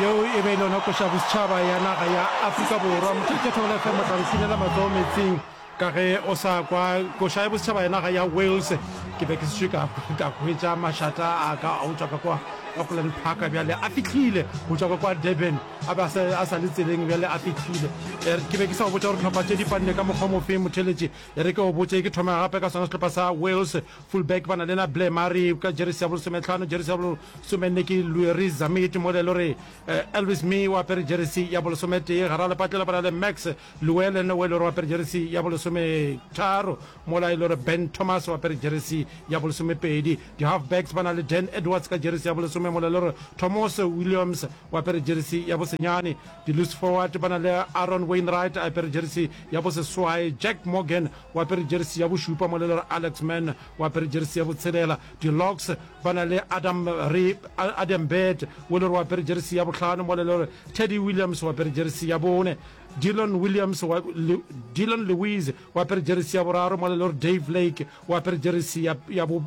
Yeo e be e lona koša bosetšhaba ya naga ya Afrika Borwa. Motšetše Thobela FM o tla re sinela matsogo metsing ka ge o sa kwa koša ya bosetšhaba ya naga ya Wales. Ke be ke sešwe ka ka hwetša mašata a ka a utswa ka kwa Auckland Park bjale a fihlile go tšwa ka kwa Durban a be a sa a sa le tseleng bjale a fihlile. E re ke be ke sa o botša gore tlhopha tše di panne ka mokgwa mofe motheletše. E re ke o botše ke thoma gape ka sona sehlopha sa Wales. Fullback ba na le na Blair Murray ka jeresi ya bolesometlhano, jeresi ya bolesomenne ke Lueris Zammit, mo le lo re eh, Elvis Mee o apere jeresi ya bolesometee. Gara lepatlela ba na le Max Llewellyn o e lo re o apere jeresi ya bolesometharo, mo la e lo re Ben Thomas o apere jeresi ya bolesomepedi. Di-halfbacks ba na le Dan Edwards ka jeresi ya bolesome, mo la e lo re Thomas Williams o apere jeresi ya bosenyane. Di-loose forward ba na le Aaron Wainwright a apere jeresi ya boseswae, Jack Morgan o apere jersi ya bošupa, mo le re Alex Mann o apere jersi ya botshelela, di-Locs ba na le Adam re Adam Bird o le re o apere jersi ya bohlano, mo le le re Teddy Williams o apere jersi ya bone, Dillon Williams wa, le, Dillon Lewis o apere jersi ya boraro, mo le le re Dave Lake o apere jersi ya, ya bo,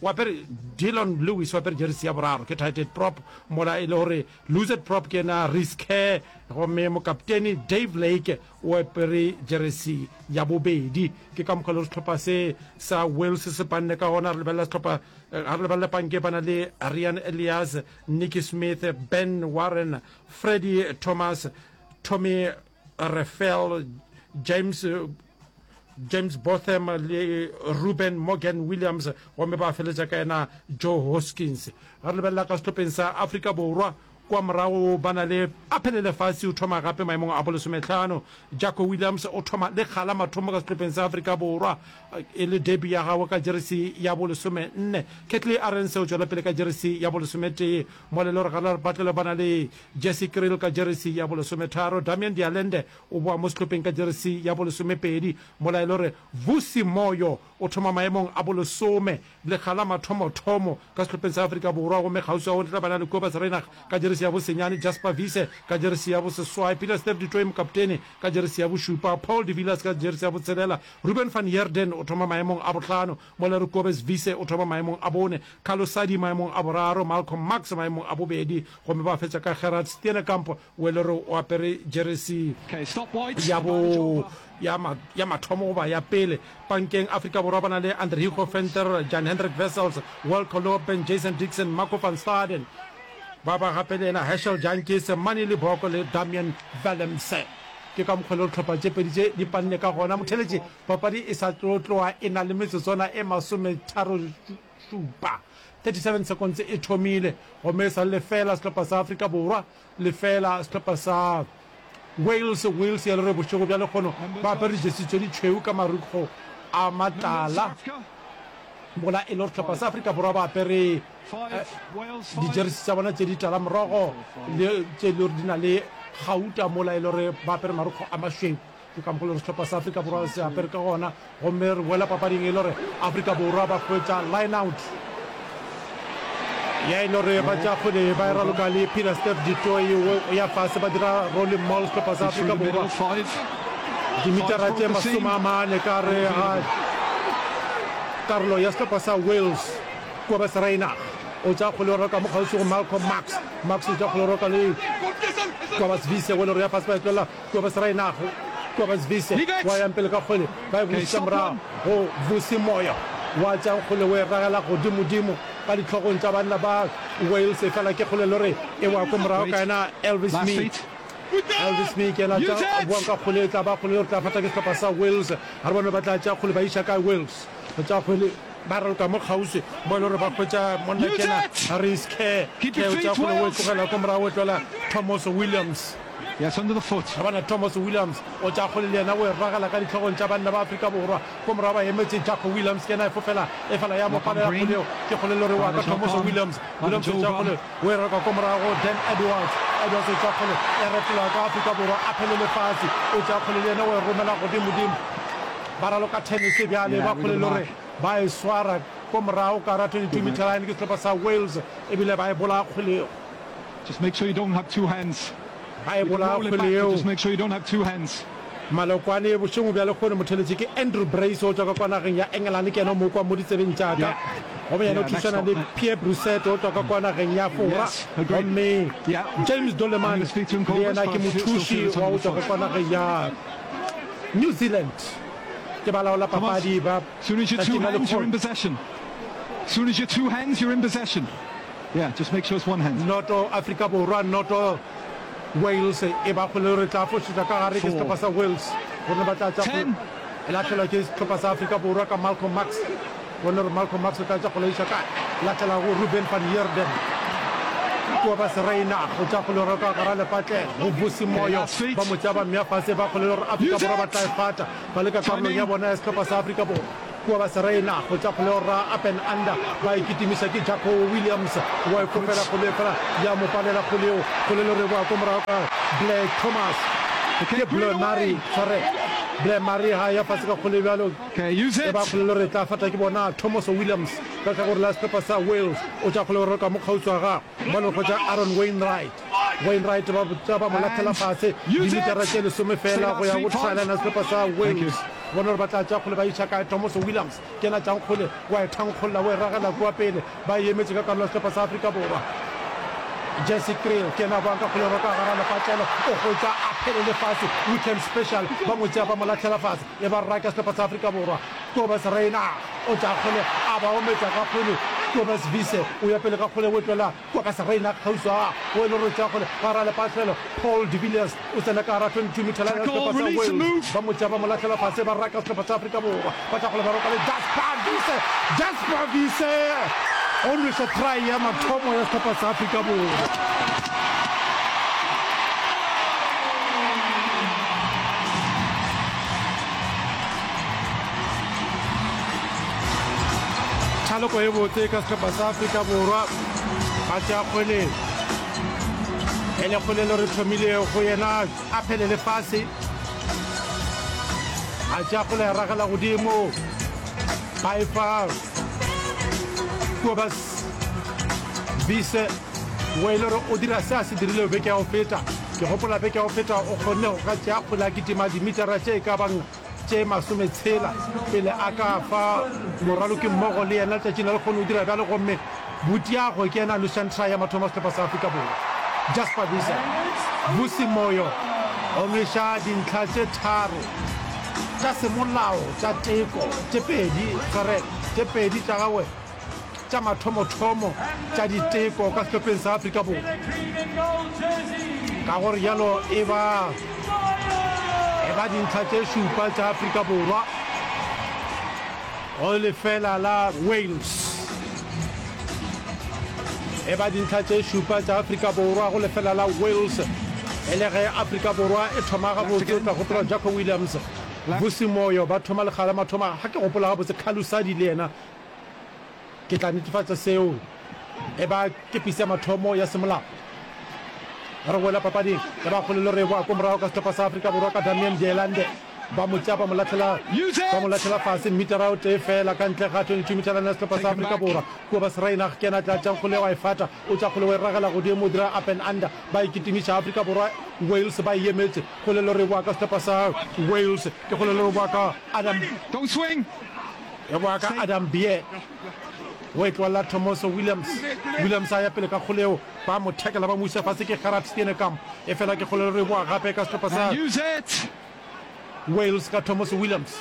o apere Dillon Lewis o apere jersi ya boraro ke tighted prop, mola e le gore loosed prop ke ena Reece Kerr, gomme mokapteni Dave Lake O apere jeresi ya bobedi. Ke ka mokgwa le sehlopha se sa Wales se panne ka gona. Re lebelela sehlopha, ga re lebelela panke ba na le Rian Elias, Nicky Smith, Ben Warren, Freddie Thomas, Tommy Reffell, James James Botham le Ruben Morgan Williams gomme ba feletša ka yena Joe Hoskins. Ga re lebelela ka sehlopheng sa Afrika Borwa, Kua morago ba na le Aphele Lefatshe o thoma gape maemong a bolesometlhano. Jacko Williams o thoma le kgala mathomo ka sehlopheng sa Afrika Borwa e le debut ya gagwe ka jeresi ya bolesomenne. Ketley Arendse o tšwela pele ka jeresi ya bolesometee. Mole le Reginald Batlele ba na le Jesse Kriel ka jeresi ya bolesometharo. Damian Dialende o boa mo sehlopheng ka jeresi ya bolesomepedi. Molaelore Vusi Moyo O thoma maemong a bolesome, lekga la mathomothomo, ka sehlopheng sa Afrika Borwa gomme kgauswi o tla ba na le Kobus Reinach ka jeresi ya bosenyane, Jasper Wiese ka jeresi ya boseswai, Pieter-Steph du Toit mokaptene ka jeresi ya bošupa, Paul de Villiers ka jeresi ya botshelela, Ruben van Heerden o thoma maemong a bohlano, Molero Kobus Wiese o thoma maemong a bone, Carlo Sadie maemong a boraro, Malcolm Marx maemong a bobedi gomme ba fetša ka Gerhard Steenekamp We le re o apere jeresi ya bo ya ma ya mathomo goba ya pele pankeng Afrika Borwa ba na le Andre Hugo Venter, Jan Hendrik Wessels, Wilco Louwpen, Jason Dixon, Marco van Staden. Ba ba gape le yena Herschel Jantjies, Manie Libbok le Damian Willemse. Ke ka mokgwa leo dihlopha tše pedi tše di panne ka gona motheletše papadi e sa tlo tloa e na le metsotswana e masometharo-šupa, 37 seconds, e thomile gomme e sa le lefeela sehlopha sa Afrika Borwa Lefela, Sehlopha sa Wales, Wales ya Lore Bošego bja lekgono ba apere dijesi tše ditšhweu ka marukgo a matala, mola e lego Sehlopha sa Afrika Borwa ba apere dijeresi tša bona tše ditala morogo le tše e lego di na le gauta, mola e lego ba apere marukgo a mašweu. Ke ka mokgwa le gore sehlopha sa Afrika Borwa se apere ka gona, gomme re boela papading e le gore Afrika Borwa ba hwetša line out ya e le gore ba tša kgwele ba e raloka le Peter Steph Ditoi o ya fase ba dira rolling mall sehlopha sa Afrika Borwa dimitara tše masome a mane ka re ga karolo ya sehlopha sa Wales kua ba serainag o tša kgwele o raloka mo kgauswi go Malcolm Max Max o tša kgwele o raloka le kua ba sevise o e le gore ya fase ba e tlolela Kobus Reinagh, Kobus Wiese wa yang pele ka kgwele, ba e bušetša morago go Vusi Moyo wa tšang kgwele o e ragela godimodimo ka dihlogong tša banna ba Wales efela ke kgwele e le gore e wa ko morago ka yena Elvis Meek. Elvis Meek yena a tšang a boang ka kgwele e tla ba kgwele e tla fata ke sehlopha sa Wales, ga re bone ba tla tšea kgwele ba iša kae Wales. Go tšea kgwele ba raloka mo kgauswi mo e le gore ba hwetša monna ke yena Rhys Kerr, Kerr o tšea kgwele o e tlogela ko morago o e tlohela Thomoso Williams. Ga ba na Thomas Williams o tša kgole le yena o e ragela ka dihlogong tša banna ba Afrika Borwa. Ko morago ba emetse Jacko Williams ke yena a e fofela efela ya mo palela kgole yeo ke kgole le gore wa ka Thomoso Williams. Williams o tša kgole o e reka ko morago go Dan Edwards. Edwards o tša kgole e retela ka Afrika Borwa a phele lefase o tša kgole le yena o e romela godimodimo. Ba raloka tennis bjale ba kgole le gore ba e swara ko morago ka ra 22 meter line ke sehlopa sa Wales ebile ba e bolaya kgole yeo. A ebola kgwele yeo. Malokwane bošego bja lekgone motheletše ke Andrew Brace o tšwa ka kwa nageng ya Engelane ke yena o mo kwa mo ditsebeng tša ka gomme yena o thušana le Pierre Brusset o tšwa ka kwa nageng ya Fora gomme James Doleman le yena ke mothuši wa o tšwa ka kwa nageng ya New Zealand ke balaola papadi ba ka tima lekgone. Noto, Afrika Borwa, Noto, Wales e ba kgole. Re tla fošetša ka gare, ke sehlopha sa Wales gomme ba tla tša go lahlela ke sehlopha sa Afrika Borwa ka Malcolm Marx. Bone re Malcolm Marx o tla tša go leiša ka lahlela go Ruben van Heerden. Kua ba Seraina go tša kgole re ka gara lepatle go Vusi Moyo ba mo tša ba mmea fase ba kgole re Afrika Borwa ba tla e fata ba le ka karolong ya bona ya sehlopha sa Afrika Borwa. Kua ba serena go tša kgolego rra up and under ba ikitimiša ke Jaco Williams wa e kopela kgole efela ya mo palela kgole yeo kgole le reboa ko morago ka Blair Thomas ke Blair Murray sorry Blair Murray ha ya fase ka kgole bjalo e ba kgole le re tla fata ke bona Thomas Williams ka ka gore la sepepa sa Wales o tša kgole gore ka mo kgauswa ga Bjalo go tša Aaron Wainwright. Wainwright ba botša ba mo lathela fase dimitara tše lesome fela go ya go thraelana sehlopha sa Wales. Bona gore ba tla tša kgole ba iša kae. Tomoso Williams ke ena tšang kgole, wa e thankgolla, o e ragela kua pele. Ba e emetše ka karolo ya sehlopha sa Afrika Borwa. Jesse Kriel ke ena boang ka kgole roka gara lepatlelo, o hwetša a phelele fase. Wickham Special ba mo tšea ba mo lathela fase, e ba raka sehlopha sa Afrika Borwa. Kobus Rainer o tla kgole a ba ometša ka kgwele. Kobus Wiese o ya pele ka kgwele o etlola Kobus Rainer kgauswa go e le gore o tšea kgwele gare a lepatlelo. Paul de Villiers o tsena ka gare a 22 mitha line ya sehlopha sa Wales. Ba mo tšea ba mo lahlela fase ba raka sehlopha sa Afrika Borwa. Ba tla kgole ba roka le Jasper Wiese. Jasper Wiese o nweša try ya mathomo ya sehlopha sa Afrika Borwa. thaloko e botse ka sehlopha sa afrika borwa ga se a kgweleng e le kgolelo re thomile go yena a phele lefase ga se a kgole ya ragela godimo ba e fa kobas bise wa e le gore o dira se a se dirile beke ya go feta ke gopola beke ya go feta o kgonne go ka tšea kgole a kitima dimetara tše e ka bang tše masometshela pele a ka fa morwalokimmogo le yena letšatšing la lekgono o dira bjalo gomme Butiago ke yena a nošang try ya mathomo a sehlopha sa Afrika Borwa. Jasper Wiese Vusi Moyo o nweša dintlha tše tharo tša semolao tša teko, tše pedi, correct, tše pedi tša gagwe tša mathomothomo tša diteko ka sehlopheng sa Afrika Borwa, ka go rialo e ba e ba dintlha tše šupa tša Afrika Borwa go lefela la Wales e ba dintlha tše šupa tša Afrika Borwa go lefela la Wales e le ge Afrika Borwa e thoma gabotse o tla gopola Jacko Williams Vusi Moyo ba thoma lekgala mathoma ga ke gopola gabotse Khalusadi le yena Ke tla netefatša seo e ba kepisi ya mathomo ya semolao. Re boela papading ya bagolelo re boa ko morago ka sehlopha sa Afrika Borwa ka Damian Ndyelande. Ba mo tšea ba mo latlhela ba mo latlhela fase mmitara o tee fela ka ntle ga 22 mitarana ya sehlopha sa Afrika Borwa. Kua ba Sreinach ke ena a tlatšang kgole wa e fata, o tša kgole wa e ragela godimo o dira up and under ba e kitimiša. Afrika Borwa Wales ba e emetše. Golelo re boa ka sehlopha sa Wales. Ke golelo re boa ka Adam. E boa ka Adam Beer. O e tloalla Tomoso Williams. Williams a ya pele ka kgoleo. Ba mo tackle ba mo isa fase ke Gerard Steenekamp. E fela ke kgolelo e boa gape ka sehlopha sa Wales ka Tomoso Williams.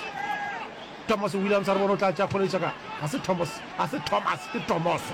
Tomoso Williams a re bona o tla tša kgoleo tša ka. Ga se Thomas, ga se Thomas, ke Tomoso.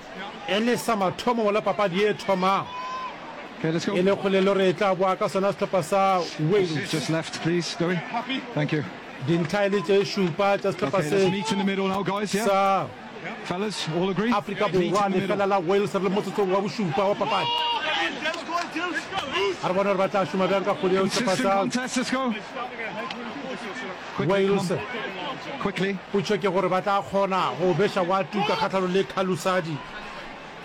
E le sa mathomo mola papadi e thomang, e le kgolelo re e tla boa ka sona sehlopha sa Wales. Dintlha e le tše šupa tša sehlopha se sa Afrika Borwa, lefela la Wales re le motsotsong wa bošupa wa papadi. A re bone gore ba tla šoma bjang ka kgole eo sehlopha sa Wales o tšhweke gore ba tla kgona go beša wa tuka kgahlano le Calusadi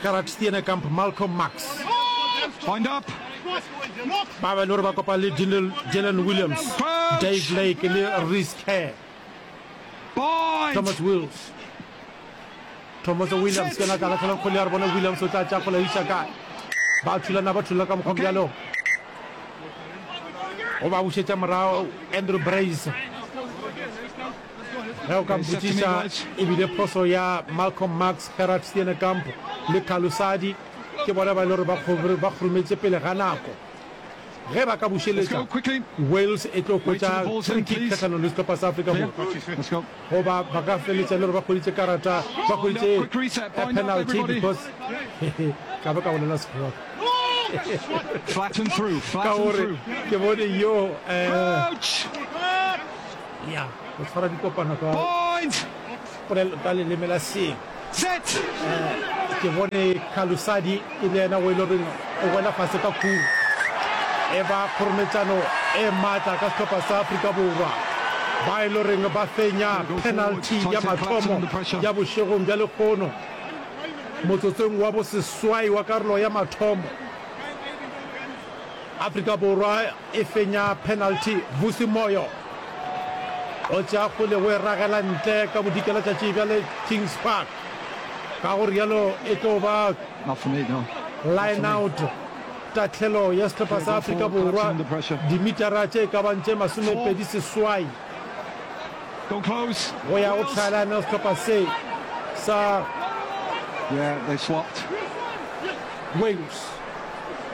Gerard Steenekamp Malcolm Marx ba ba le gore ba kopana le Dinel Jalen Williams Dave Lake le Rhys Kerr Thomas Wills Thomoso Williams ke ngaka latlhela kgole ya re bone Williams o tla tša kgole iša kae ba thulana ba thulana ka mokgwa bjalo o ba bušetša morago Andrew Brace ge o ka mpotsiša ebile phoso ya Malcolm Max Gerard Steenekamp le Kalusadi ke bona ba e le gore ba kgorometse pele ga nako Ge ba ka bušeletša, Wales e tlo hwetša free kick kgahlano le sehlopha sa Afrika Borwa, goba ba ka feletša e le gore ba hweditše karata, ba hweditše a penalty because ka be ka bolela Sekgowa ka gore ke bone yo ya go tshwara dikopano ka leleme la seng. Set! Ke bone Khalusadi e le yena o e le goreng o wela fase ka khung. E ba kgorometšano e matla ka sehlopha sa Afrika Borwa, ba e le goreng ba fenya penalty ya mathomo ya bošegong bja lekgono motsotsong wa boseswai wa karolo ya mathomo. Afrika Borwa E fenya penalty, Vusi Moyo o tšea kgole o e ragela ntle ka bodikela tšatši bjale Kings Park, ka go rialo e tlo ba lineout tahlelo ya sehlopha sa Afrika Borwa dimitara tše e ka bang tše masomepedi seswai go ya go tlhaelane go sehlopha se sa Wales.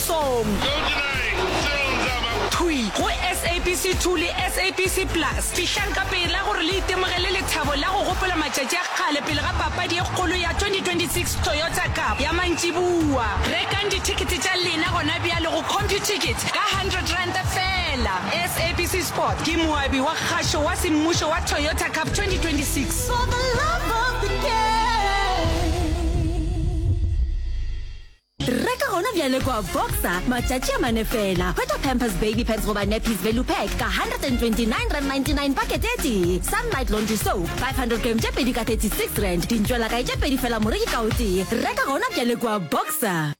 Song. Thwi go SABC 2 le SABC Plus. Fihlang ka pela gore le itemogele lethabo la go gopola matšatši a kgale pele ga papadi e kgolo ya 2026 Toyota Cup ya mantšiboa. Rekang dithekete tša lena gona bjale go CompuTicket ka R100 feela. SABC Sport ke moabi wa kgašo wa semmušo wa Toyota Cup 2026. For the love of the game. Reka gona bjale kua Boxer matšatši a mane fela. Hwetša Pampers Baby Pants goba Nappies Value Pack ka R129.99 pakete e tee. Sunlight Laundry Soap 500 grams tše pedi ka R36. Dintšwelakae tše pedi fela moreki ka o tee. Reka gona bjale kua Boxer.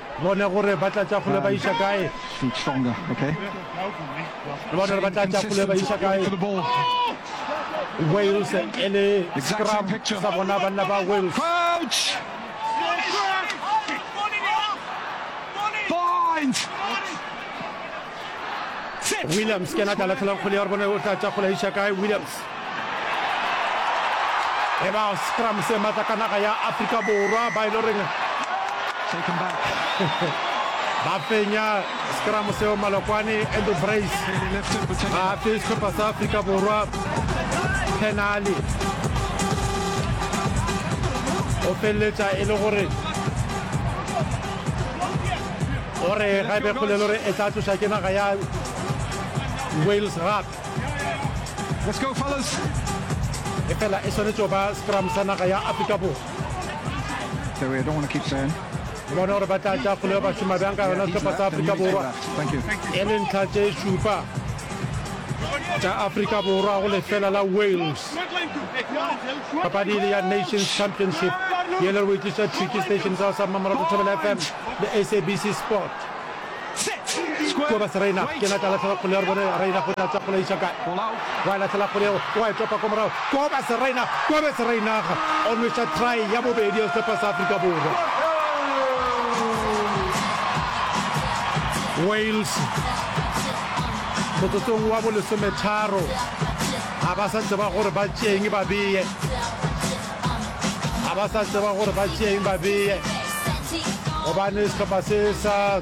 Bone gore ba tla tša kgole ba iša kae. Le bone gore ba tla tša kgole ba iša kae. Wales e le scrum sa bona banna ba Wales. Point! Williams ke ena tla lahlelang kgole ya gore bone o tla tša kgole iša kae Williams e ba scrum se matla ka naga ya Afrika Borwa ba ile reng ba fenya scrum seo malokwane Andrew Brace ga a fe sehlopha sa Afrika Borwa penale o feleletša e le gore o re ga e be kgolelo re e tla tloša ke naga ya wales gap e fela e swanetše ba scrum sa naga ya afrika borwa bona gore ba tla tša kgolo ya bašoma bjang ka yona sehlopha sa afrika borwa e le ntlha tše šupa tša afrika borwa go lefela la wales papadi le ya nations championship ye le re boitliša tricky station sa sa mmamorago thobela fm le sabc sport ko ba sereina ke na ka latlhela kgole ya re bone reina go tlatsa kgole iša kae wa e latlhela kgole yeo wa e topa ko morago ko ba sereina ko be sereinaga o nweša try ya bobedi ya sepa sa afrika borwa wales motsotsong wa bolesometharo Ga ba sa tseba gore ba tšeeng ba beye Ga ba sa tseba gore ba tšeeng ba beye Gobane sehlopha se sa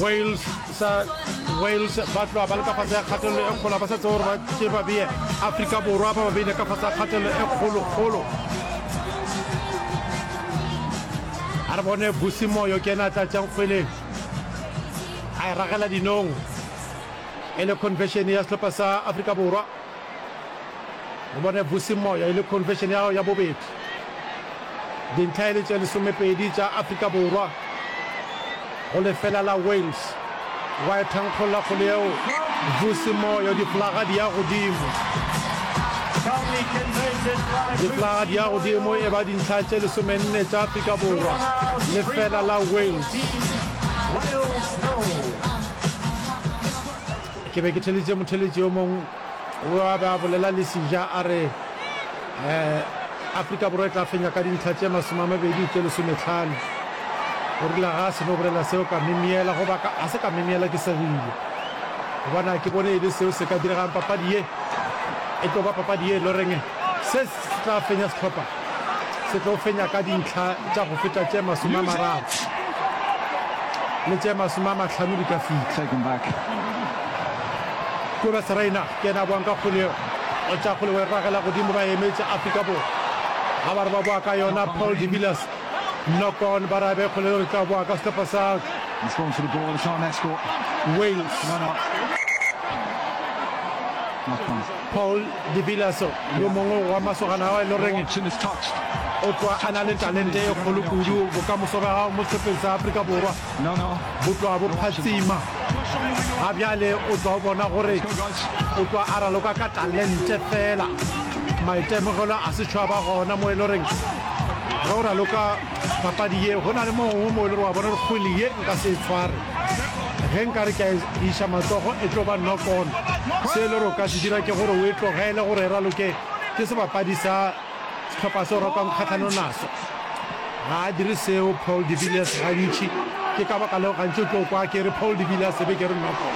Wales sa Wales ba tloa ba le ka fase ya kgatelelo e kgolo ba sa tseba gore ba tšee ba beye Afrika Borwa ba ba beile ka fase ya kgatelelo e kgolo-kgolo a re bone busimoyo ke ena a tlatšang kgweleng a e ragela dinong e le conversion ya sehlopha sa Afrika Borwa o bone Vusi Moya e le conversion ya ya bobedi dintlha e le tše lesomepedi tša Afrika Borwa go lefela la Wales wa e thankgolla kgolo yeo Vusi Moya diflaga di ya godimo diflaga di ya godimo e ba dintlha tše lesomenne tša Afrika Borwa lefela la Wales ke be ke theleditše motheletši yo mongwe o a be a bolela le sija a re um afrika borwa e tla fenya ka dintlha tše masome a mabedi tše lesometlhano o rile ga a seno bolela seo ka memiela goba a se ka memiela ke segile gobane a ke bone e le seo se ka diregang papadi ye e tlo ba papadi ye e loreng se se tla fenya setlhopha se tlo fenya ka dintlha tša go feta tše masome a mararo le tše masome a mahlano di ka fihla kobes reina ke ena boang ka kgole o tša kgole wa e ragela godimo ba emetše afrika borwa ga ba re ba boa ka yona paul de villas nokon ba rabe kgole re tla boa ka sehlopha sa wales Paul de Villarceau, yo mongwe wa masogana ao e le goreng o tlwa a na le talente e kgolo kudu. Bokamoso bja gago mo sehlopheng sa Afrika Borwa bo tlwa bo phatsima ga bjale. O tlwa o bona gore o tlwa a raloka ka talente fela, maitemogelo a setšho a ba gona mo e le goreng ge o raloka papadi ye go na le mo gongwe mo e le gore wa bona gore kgwele ye nka se e tshware. ge nka re ke a iša matsogo e tlo ba nokon se e le gore o ka se dira ke gore o e tlogele gore e raloke ke sebapadi sa setlhopha se o ratang kgatlhanong naso ga a dire seo paul de villiers gantši ke ka baka leo gantši o tlo kwa ke re paul de villiers ebe ke re nokon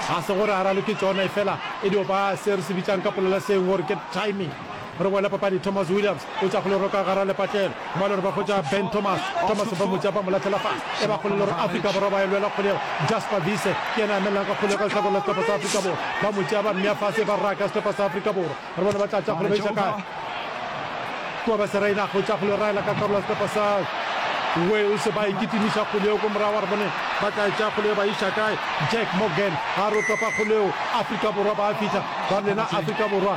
ga se gore a raloke tsona e fela e dio ba se re se bitsang ka polela seng gore ke timing Re boela papadi, Thomas Williams o tša kgoloro ka gara lepatlelo, ba lore ba hwetša Ben Thomas, Thomas ba mo tša ba mo lahlela fase, e ba kgolelo gore Afrika Borwa ba e lwela kgolego, Jasper Wiese ke yena a emelelang ka kgolego ka lehlakore la sehlopha sa Afrika Borwa, ba mo tšea ba mmea fase e ba raka sehlopha sa Afrika Borwa, re bone ba tla tša kgolego ba iša kae, Kobese Raynagh o tša kgolego e raela ka karolo ya sehlopha sa Wales, ba e kitimiša kgolego ko morago, re bone ba tla e tša kgolego ba iša kae, Jack Morgan a re o topa kgolego, Afrika Borwa ba a fihla, ba lena Afrika Borwa.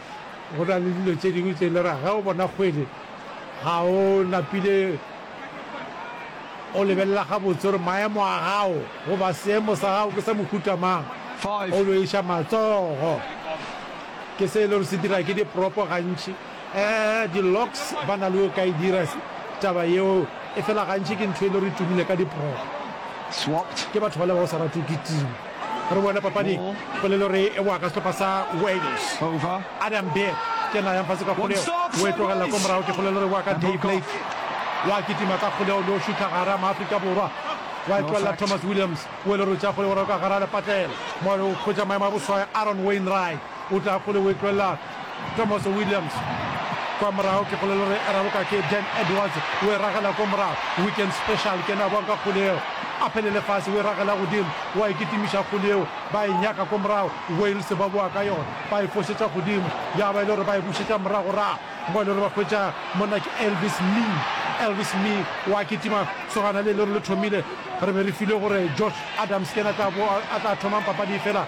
Go na le dilo tše dingwe tše e le ra ge o bona kgwele ga o napile o lebelela gabotse gore maemo a gago goba seemo sa gago ke sa mohuta mang, o no iša matsogo. Ke se e le gore se dira ke dipropo gantši. Um di-Locks ba na le o ka e dira taba yeo, efela gantši ke ntho e le gore e tumile ka dipropo. Ke batho bale ba o sa ratwe ke team. Re boela papading. Polelo re e boa ka sehlopha sa Wales. Adam Beard ke yena a yang fase ka kgoleo, o e tlogelela ko morago. Ke polelo re e boa ka Dave Blake. O a kitima ka kgoleo le o šutha gare a Maafrika Borwa. O a e tlogelela Thomas Williams, o e le gore o tšea kgoleo gore o ka gare a lepatlela. Mo o hwetša maemo a boswaya Aaron Wainwright. O tla kgole o e tloelela Tomoso Williams kwa morago ke kgole le gore e raloka ke Dan Edwards o e ragela ko morago Weekend Special ke ena a boang ka kgole eo a phele le fase o e ragela godimo wa e kitimiša kgole eo ba e nyaka ko morago Wales ba boa ka yona ba e fošetša godimo ya ba e le gore ba e bušetša moragorago mo e le gore ba hwetša monna ke Elvis Mee Elvis Mee wa kitima sogana le e le gore le thomile re be re file gore Josh Adams ke ena a tla thomang papadi e fela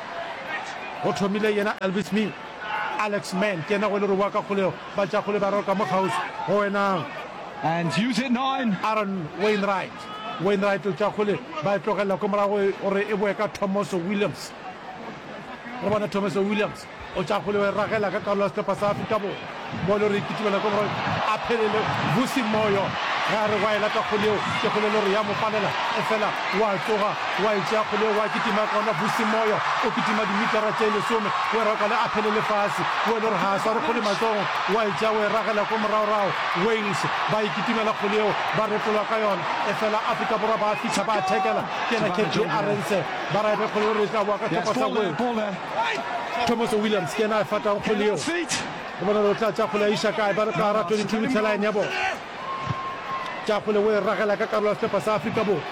Go thomile yena Elvis mi Alex Mann ke yena go le roboa ka kgolego ba tša kgole ba roka mo kgauswi go wena. And use it nine. Aaron Wainwright Wainwright o tša kgole ba e tlogelela ko morago gore e boe ka Thomoso Williams. Re bona Thomoso Williams o tša kgole o e ragela ka karolo ya sehlopha sa Afrika Borwa. Moyo re ipitibela ke gore a phelele Vusi Moyo ge a re wa e lata kgole yeo ke kgole lori ya mo palela efela wa tsoga wa e tšea kgole yeo wa kitima gona Vusi Moyo o kitima dimitara tše lesome o e rwakale a phelele fase o e lori ga a sware kgole matsogo wa e tšea o e ragela ko moragorago Wales ba e kitimela kgole yeo ba retolwa ka yona efela Afrika Borwa ba fitlha ba thekela ke yena Kevin Arendse ba ra e be kgole lori e tla boa ka thoko sa goe Thomas Williams ke yena a efatang kgwele yeo. Re bona gore o tla tšakgwele a iša kae, ba re ka gara 22 metsheline ya bona. Tšakgwele o e ragela ka karolo ya sehlopha sa Afrika Borwa.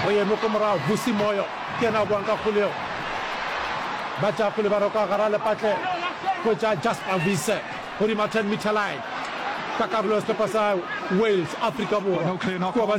Go yeme ko morago, Vusi Moyo ke yena a boang ka kgwele yeo. Ba tšakgwele ba re ka gara lepatlelo go etša Jasper Wiese godima 10 meter line ka karolo ya sehlopha sa Wales. Afrika Borwa ke wa ba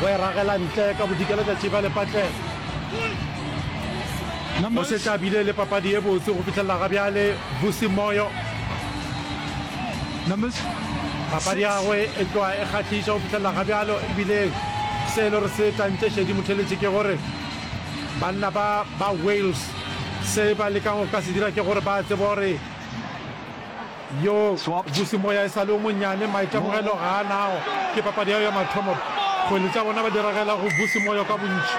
go e ragela ntle ka bodika letšatši ba lepatlelo o šetše a bile le papadi ye botse go fitlhelela ga bjale busi moyo papadi yagwe e tloa e kgahliša go fitlhelela ga bjalo ebile se e le gore se tantše šedi motheletše ke gore banna ba ba wales se ba lekang go ka se dira ke gore ba tseba gore Yo bosemoya e sa le o monnyane, maitemogelo ga a nago ke papadi yeo ya mathomo. Kgwele tša bona ba di ragela go bosemoya ka bontši.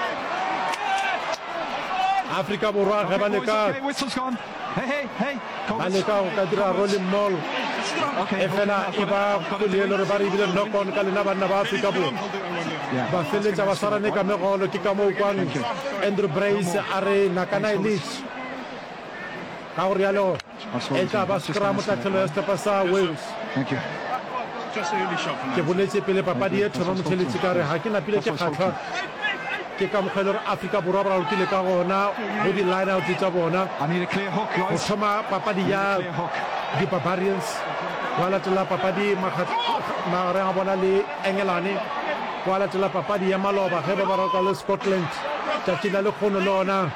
Afrika Borwa ge ba leka ba leka go ka dira rolling mall efela e ba kgwele e le gore ba re ebile knock on ka lena banna ba Afrika Borwa ba feleletša ba swarane ka megolo ke ka moo kwang Andrew Brace a re nakana elite ka go rialo e tla ba scrum tlatlhelo ya sehlopha sa Wales. Ke boletše pele papadi ye thoma motheletši ka re ga ke napile ke kgahlwa ke ka mokgwa e le gore Afrika Borwa ba ralokile ka gona go di-lineout tša bona go thoma papadi ya di-barbarians wa latela papadi magareng a bona le engelane wa latela papadi ya maloba ge ba ba rata le scotland tšatši la lekgono le ona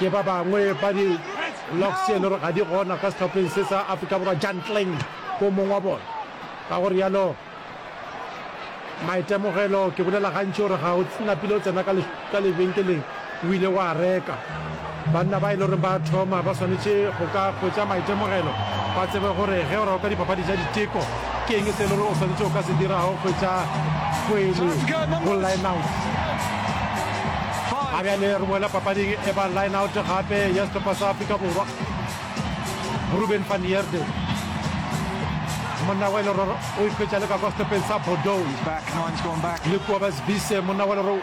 Ke ba bangwe ba di Locs e le gore ga di gona ka sehlopheng se sa Afrika Borwa. Jan Kleng ke o mongwe wa bona. Ka go rialo maitemogelo, ke bolela gantši gore ga o napile o tsena ka lebenkeleng o ile wa reka. Banna ba e le gore ba thoma ba swanetše go ka hwetša maitemogelo, ba tsebe gore ge o raloka dipapadi tša diteko, ke eng se e le gore o swanetše go ka se dirago go hwetša kgwele go line-out. A bjale re boela papading e ba line-out gape ya sehlopha sa Afrika Borwa. Ruben van Heerden, monna wa e le gore o ikhwetša le ka kwa sehlopheng sa Bordeaux, le Kobus Wiese, monna wa e le gore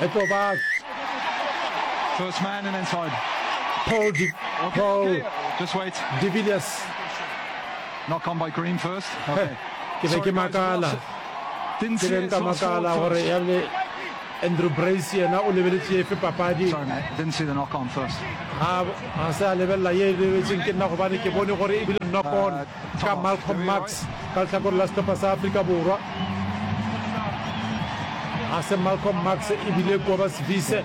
Eto back. First man and inside. Paul Di okay, Paul okay. Just wait. De Villiers. Knock on by Green first. Okay. Ke be ke makala. Didn't see it. Makala gore ya le Andrew Brace yena o lebeletse efe papadi. Sorry mate, didn't see the knock on first. Ha ha se a lebella ye lebetseng ke nna gobane ke bone gore e bile knock on. Uh, Ka Malcolm Marx ka lehlakore la sehlopha sa Afrika Borwa. Ga se Malcolm Marx e bile Kobus Wiese.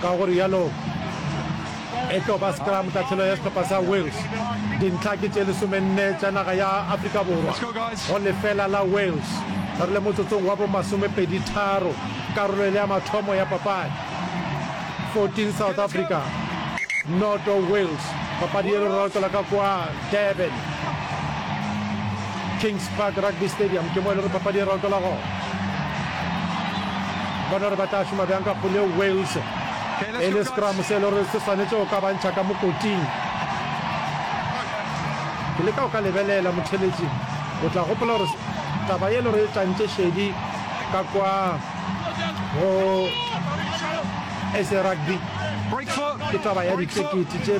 Ka go rialo e tlo ba scrum tatlhelo ya sehlopha sa Wales. Dintlha ke tše lesomenne tša naga ya Afrika Borwa go lefela la Wales. Re le motsotsong wa bomasomepedi tharo karolo e le ya mathomo ya papadi. 14 South Africa noto Wales papadi e rorokela ka kwa Durban Kings Park Rugby Stadium ke mo e le gore papadi e rorokela go bona gore ba tla šoma bjang ka pole Wales e le scrum se e le gore se swanetše go ka bantšha ka mokoting ke le ka o ka lebelela motheletši o tla gopola gore taba e le gore e tlantše šedi ka kwa go sa rugby ke taba ya ditekete tše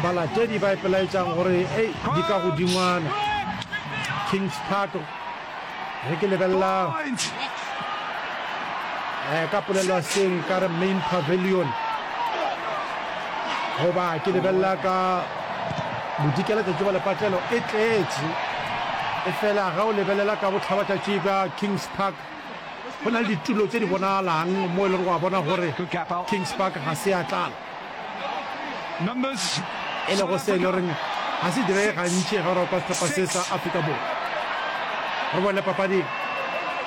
balatedi ba ipelaetšang gore e di ka godingwana kings park re ke lebelela eh, ka polelo seng ka re main pavilion goba ke lebelela ka bodikela tšatši ba lepatlelo e tletše e fela ga o lebelela ka botlhabatšatši ka kings Park go na le ditulo tše di bonagalang mo e le gore wa bona gore Kings Park ga se ya tlala, e lego se e le goreng ga se direge gantši ge o rakwa sehlopha se sa Afrika Borwa. Re bone papading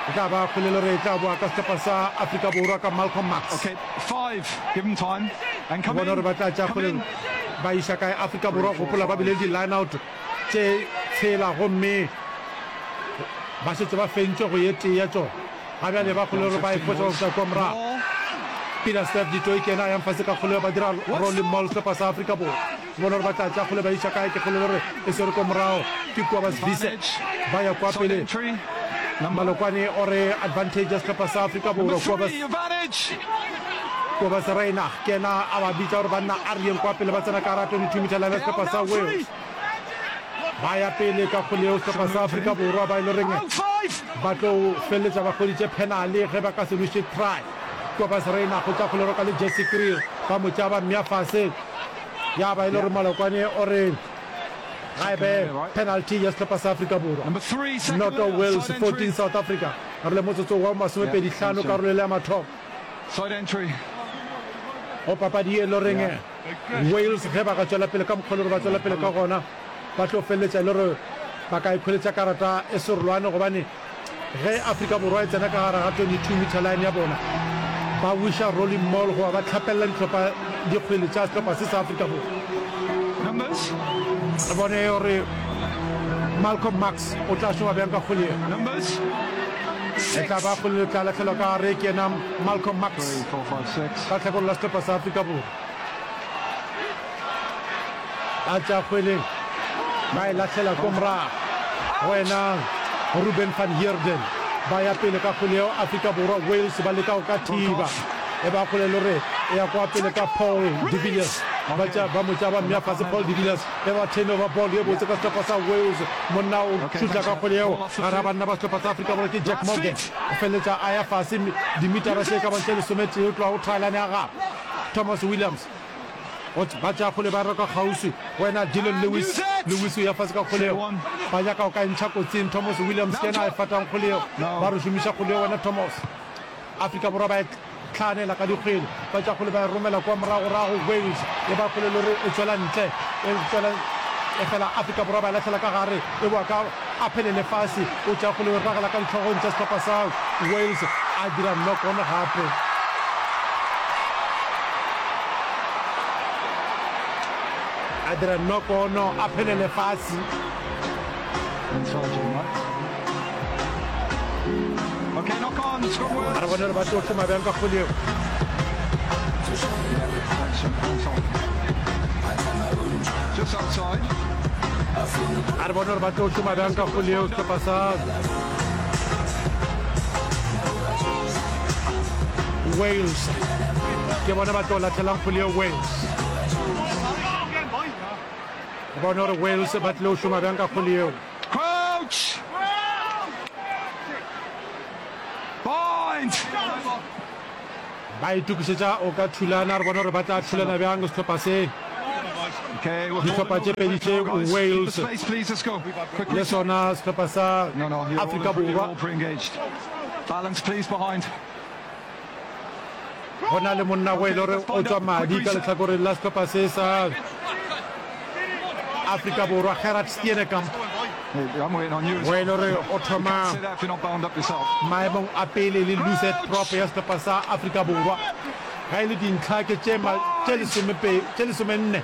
e tla ba kgole e le gore e tla boa ka sehlopha sa Afrika Borwa ka Malcolm Marx. Re bone gore ba tla tša kgole ba iša kae Afrika Borwa, gopola ba bile le di-line-out. tše tshela gomme ba šetše ba fentšwe go ye tee ya tšona. Ga bjale ba kgole gore ba e foša go fihla kua morago. Peter Steph du Toit yena a yang fase ka kgoleo ba dira rolling mall sehlopha sa Afrika Borwa. Go bona gore ba tla tša kgole ba iša kae ke kgolelo gore e swere kua morago ke kua ba Swiss ba ya kua pele. Malokwane o re advantage ya sehlopha sa Afrika Borwa kua ba. Kobus Reinach ke yena a ba bitša gore banna a re yeng kwa pele ba tsena ka gara 22 meter line ya sehlopha sa Wales ba ya pele ka kgole yeo sehlopha sa Afrika Borwa ba e le reng ba tlo feleletša ba kgweditše penale ge ba ka se lwešitše try Kobus Reinach o tša kgole roka le Jesse Kriel ba mo tšea ba mmea fase ya ba e le gore Malokwane o re ga e be penalty ya sehlopha sa Afrika Borwa noto Wales 14 South Africa re le motsotso wa masomepedi hlano karolelo ya mathomo Side entry. Go papadi ye lo reng Wales ge ba ka tšwela pele ka mokgwa le gore ba tšwela pele ka gona ba tlo feleletša le gore ba ka ikholetša karata e serolwane gobane ge Afrika Borwa e tsena ka gare ga 22 meter line ya bona ba wisha rolling mall goba ba tlhapelela ditlhopha dikgwele tša setlhopha se sa Afrika Borwa Numbers. re bone gore Malcolm Marx o tla šoba bjang ka kgwele ye Numbers. E tla ba kgole le tla lahlelwa ka gare ke yena Malcolm Marx ka tlhakolo la sehlopha sa Afrika Borwa. A tša kgwele ba e lahlela ko morago go yena Ruben van Heerden. Ba ya pele ka kgwele yeo Afrika Borwa. Wales ba leka go ka thiba e ba kgole le gore e ya kwa pele ka Paul de Villiers. Ba mo tšaba mme a fase Paul de Villiers. Ge ba theme ba ball ye botse ka sehlopha sa Wales, monna o šutla ka kgole yeo gare ga banna ba sehlopha sa Afrika Borwa ke Jack Morgan. O feleletša a ya fase dimitara tše e ka bang tše lesometee go tloga go thaelane ya gagwe Thomas Williams. Go ba tša kgole ba roka kgauswi go wena Dillon Lewis. Lewis o ya fase ka kgole yeo. Ba nyaka go ka e ntšha kotsing. Thomas Williams ke yena a e fatang kgole yeo. Ba re šomiša kgole yeo wena Thomas. Afrika Borwa ba e hlaanela ka dikgwele, ba tša kgwele ba e romela kua moragorago, Wales e ba kgwele e le gore e tšwela ntle, e tšwela efela Afrika Borwa ba e lahlela ka gare, e bowa ka Aphele Lefase o tšea kgwele o e ragela ka ditlhogong tša sehlopha sa Wales, a dira knock-on gape. a dira knock-on Aphele Lefase. a re bone gore ba tlo tlhoma bjang ka kgole eo a re bone gore ba tlo tlhoma bjang ka kgole eo setlhopha sa wales ke bone ba tlo latlhelang kgole eo wales bone gore wales ba tlile go šoma bjang ka kgole eo Ba itokišetša o ka thulana, re bone gore ba tla thulana bjang sehlopha se. Dihlopha tše pedi tše, Wales le sona sehlopha sa Afrika Borwa. go na le monna go e le gore o tswa madi ka letlhakoreng la setlhopha se sa afrika borwa gerard stienekamp go e le gore o thoma maemong a pele le luset prop ya setlhopha sa afrika borwa ga e le dintlha ke tše lesomenne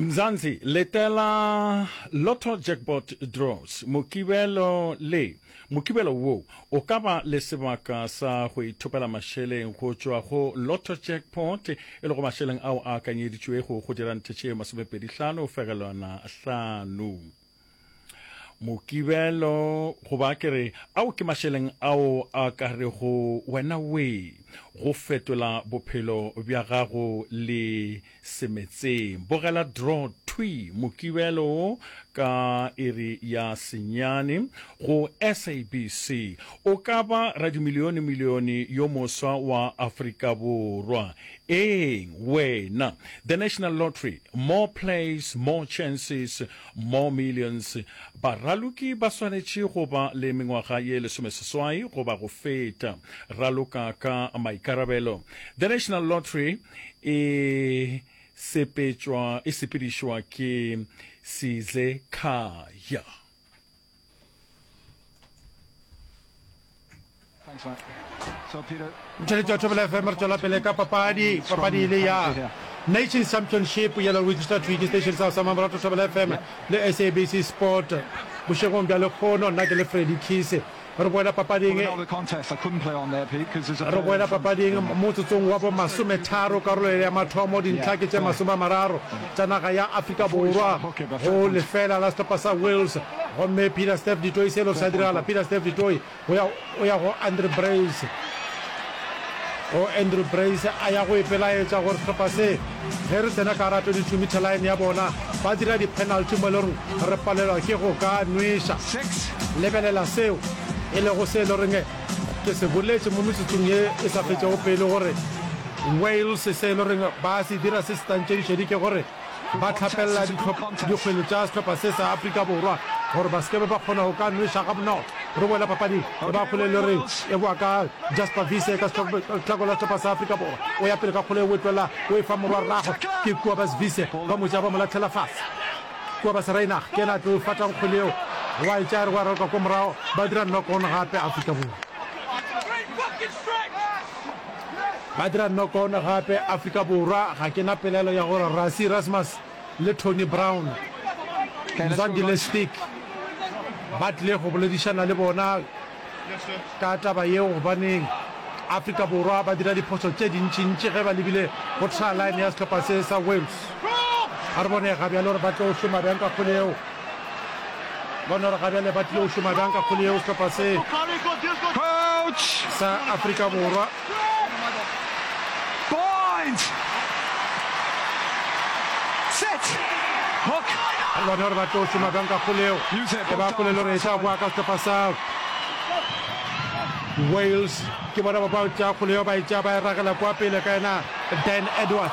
Mzansi, letela Lotto Jackpot Draws, Mokibelo le Mokibelo wo o ka ba le sebaka sa go ithopela mašeleng go tšwa go Lotto Jackpot, e lego mašeleng ao a akanyeditšwego go dira nthe tše masomepedi hlano fegelwana hlano. Mokibelo, goba ke re, ao ke mašeleng ao a ka rego wena wee go fetola bophelo bja gago le semetseng. Bogela draw thwi, Mokibelo wo ka iri ya senyane go SABC. O ka ba radimilionemilione yo moswa wa Afrika Borwa. Eeng, wena. The National Lottery, more plays, more chances. Mo Millions, baraloki ba swanetše go ba le mengwaga ye lesomeseswai goba go feta. Raloka ka maikarabelo. The National Lottery e sepetšwa, e sepedišwa ke Sizekhaya. motšweletši wa thobela fm re tswela pele ka papadi papadi e le ya nation championship yela register twiki station sa sa mamarato thobela fm le sabc sport bošegong bja lekgono nna ke le freddy kise re boela papading re boela papading motsotsong wa bomasometharo karolo ya mathomo dintlha ke tše masome a mararo tša naga ya Afrika Borwa go lefeela la sehlopha sa Wales gomme Pieter-Steph du Toit selo sa diragala Pieter-Steph du Toit o ya o ya go Andre Brace go Andrew Brace a ya go ipelaetša gore sehlopha se ge re tsena ka ra 22 meter line ya bona ba dira di-penalty mo e le goreng re palelwa ke go ka nwesa lebelela seo e lego se e le goreng Ke se boletše mo metsotsong ye e sa fetšego pele gore Wales se e le goreng ba se dira se setantšedišedi ke gore ba hlapelela dikgwele tša sehlopha se sa Afrika Borwa gore ba se ke ba kgona go ka nweša gabonolo. Re boela papading e ba kgole e le goreng e boa ka Jasper Wiese ka tlhako la sehlopha sa Afrika Borwa. O ya pele ka kgole e wetwela o e fa morwa rragwe ke Kobus Wiese ba mo tšea ba mo latlhela fase. Kua ba Serainag, ke ena a tlo fatang kgwele yeo, gwa etša re gwa raloka kwa morago, ba dira knock on gape Afrika Borwa. Ba dira knock on gape Afrika Borwa, ga ke na pelaelo ya gore Rassie Erasmus le Tony Brown, Mzwandile Stick, ba tlile go boledišana le bona. ka taba yeo gobaneng Afrika Borwa ba dira diphoso tše dintšintši ge ba lebile go try line ya sehlopha se sa Wales. A re bone ga bjale gore ba tlo šoma bjang ka kgole yeo. Bone gore ga bjale ba tlilo šoma bjang ka kgole yeo sehlopha se sa Afrika Borwa. Point! Set! Hook! Re bona gore ba tlo šoma bjang ka kgoleo e ba polelo re eša boa ka sehlopha sa Wales ke bona ba ba tšea kgoleo ba e tšea ba e ragela kwa pele ka yena Dan Edwards